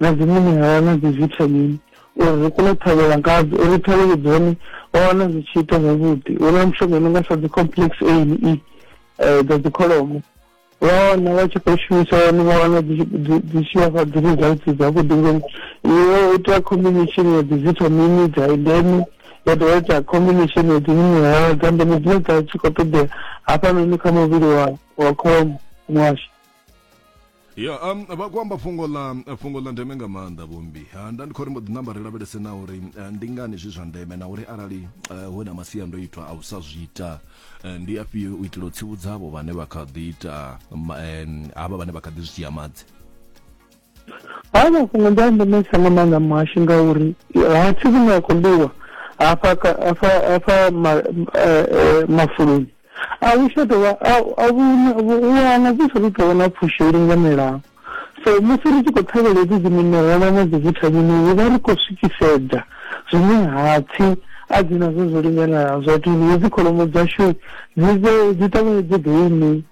na dziṅwe minerala na dzivithamini uri ri kone u ṱhavhela ngadzo uri ṱhavhelo dzone wa wana zwi tshi ita zwavhuḓi hu na mishonga i no nga sa dzi complex a ne e um dza dzikholomo wa wana wa tshi khou shumisa yone wa wana dzi tshi vhafha dzi results dzavhuḓi ngori iwe u ita combination ya dzi vithamini dza ndeme ya dovha ita combination ya dzi minerala dza ndeme dzine dza tshi khou ṱoḓea hafhanoni kha muvhili wa wa kholomo washu ya um, vha khou amba fhungo ḽa fhungo ḽa ndeme nga maanḓa vhombi ha nda ndi khou ri mbo ḓi namba ri lavhelese na uri eh, ndi ngani zwi zwa ndeme na uri arali eh, hu na masiandoitwa a u sa zwi ita eh, ndi afhio u itela u tsivhudza havho vhane vha kha ḓi ita ma- em, havha vhane vha kha ḓi zwi dzhia madzi Haya mafhungo ndi a ndemesa nga maanḓa muhashi ngauri ha thi vhune a khou ḽiwa hafha hafha hafha mafuloni a hu tsha tovha a vhuna wana dzi sa tou tovha na pfhushi yo linganelaho so musi ri tshi khou ṱhavhela hedzi dzi minerala na dzi vithamini ri vha ri khou swikisedza zwine hapfhi a dzi nazwo zwo linganelaho zwa tea uri hedzi kholomo dzashu dzi vhe dzi ṱavhanye dzi ḓo iṋei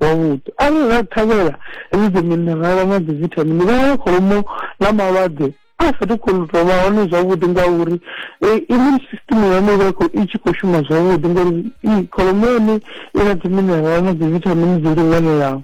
wavhuḓi. Arali ra ṱhavhela hedzi dziminerala na dzivithamini, vhana vha kholomo na malwadze a sa tou khou tou vha hone zwavhuḓi ngauri immune system ya hone i vha i tshi khou shuma zwavhuḓi ngori kholomo ya hone i na dziminerala na dzivithamini dzo linganelaho.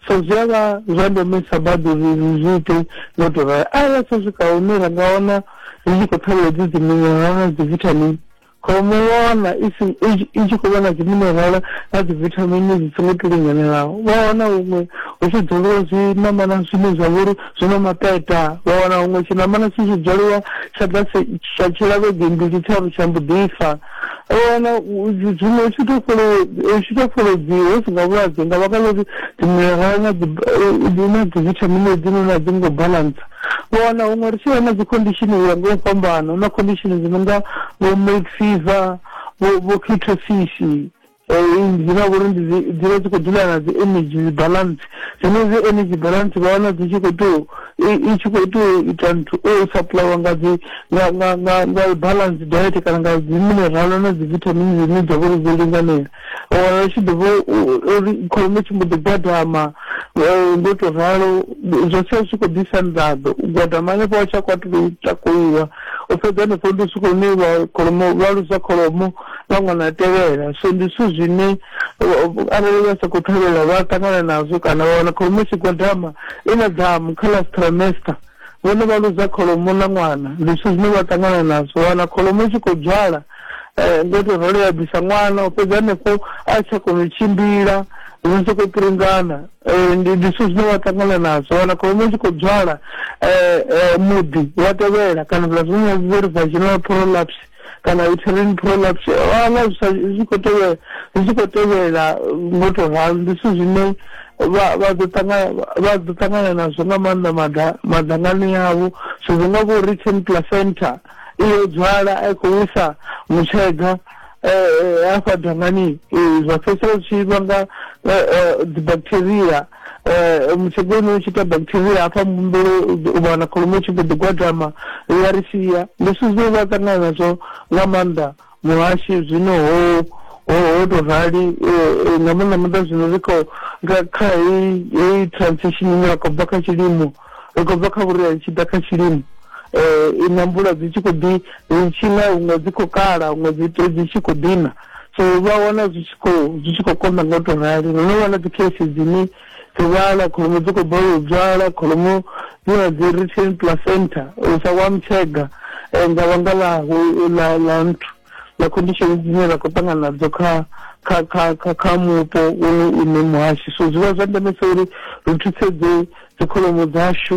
So zwi a vha zwa ndemesa badi uri ri zwi ite nga u tou ralo. Arali ha tsha swika hune ra nga wana ri tshi khou ṱhavhela hedzi dziminerala na dzivithamini, Kholomo vha wana i si i tshi khou vha na dziminerala na dzivithamini dzi songo to linganelaho vha wana huṅwe hu tshi dzoliwa zwiṋamana zwine zwa vha uri zwi na maṱeṱa vha wana huṅwe tshiṋamana tshi tshi dzoliwa tsha ḓa tsha tshila vhege mbili tharu tsha mbo ḓi fa vha wana zwiṅwe u tshi to fholo u tshi to fholodziwa hu si nga vhulwadze nga vhaka ḽa uri dziminerala na dzi na dzivithamini hedzinoni a dzi ngo balance. U wana huṅwe ri tshi vha na dzi khondishini u ya nga u fhambana, hu na khondishini dzi no nga vho milk fever, vho vho ketosisi, dzine ha vha uri ndi dzi vha dzi khou dzula na dzi energy dzi balance. Dzenedzi energy balance vha wana dzi tshi khou tou i tshi khou tou ita nthu u supply nga dzi nga nga nga nga balance diet kana nga dzi mineral na dzi vithamini dzine dza vha uri dzo linganela. wa wana ri tshi ḓi vho uri kholomo tshi mbo ḓi gwadama ngo to ralo zwa sia zwi tshi khou ḓisa nḓaḓo u gwadama hanefho wa tsha kwatu tou takuliwa u fhedza hanefho ndi swika hune vha kholomo vha lusa kholomo vha ṅwana a tevhela so ndi zwithu zwine arali vha sa khou ṱhavhela vha ṱangana nazwo kana vha wana kholomo tshi gwadama i na damu kha last trimester vhone vha luza kholomo na ṅwana ndi zwithu zwine vha ṱangana nazwo wana kholomo i tshi khou dzwala um ngo to rolo ya bvisa ṅwana u fhedza hanefho a tsha kona u tshimbila zwi sokou pringana um ndi zwithu zwine vha ṱangana nazwo wana kholomo i tshi khou dzwala um muḓi wa tevhela kana zwa zwiṅwe zwi ri vaginal prolapse kana uterine prolapse wana zwi tshi khou tevhela zwi tshi khou tevhela ngo to ralo ndi zwithu zwine vha vha ḓo ṱangana vha ḓo ṱangana nazwo nga maanḓa maḓa maḓangani yavho so zwi nga vho return placenta iyo dzwala a i khou wisa mutshega um hafha dangani zwa fhedzisela zwi tshi vhanga dzi bacteria Eh, mutshegono u tshi ita bacteria hafha mbumbelo u vha na kholomo tshi mbo ḓi gwadama ya ri sia leswi zwo vha ṱangana nazwo nga maanḓa muhashi zwino ho ho tou rali eh, eh, nga maanḓa maanḓa zwino ri khou kha heyi transition ine ya khou bva kha tshilimo ri khou bva kha vhuria ri tshi ḓa kha tshilimo um i na mvula dzi tshi khou ḓi ri tshi na huṅwe dzi khou kala huṅwe dzi dzi tshi khou ḓina so vha wana zwi tshi khou zwi tshi khou konḓa nga u tou rali ro no wana dzi case dzine dzi vhala kholomo dzi khou balelwa u dzwala kholomo dzi na dzi retain placenta u sa wa mutshega um nga vhanga ḽa nthu na conditions dzine ra khou ṱangana nadzo kha kha kha kha kha mupo une une muhashi so zwi vha zwa ndemesa uri ri thusedze dzikholomo dzashu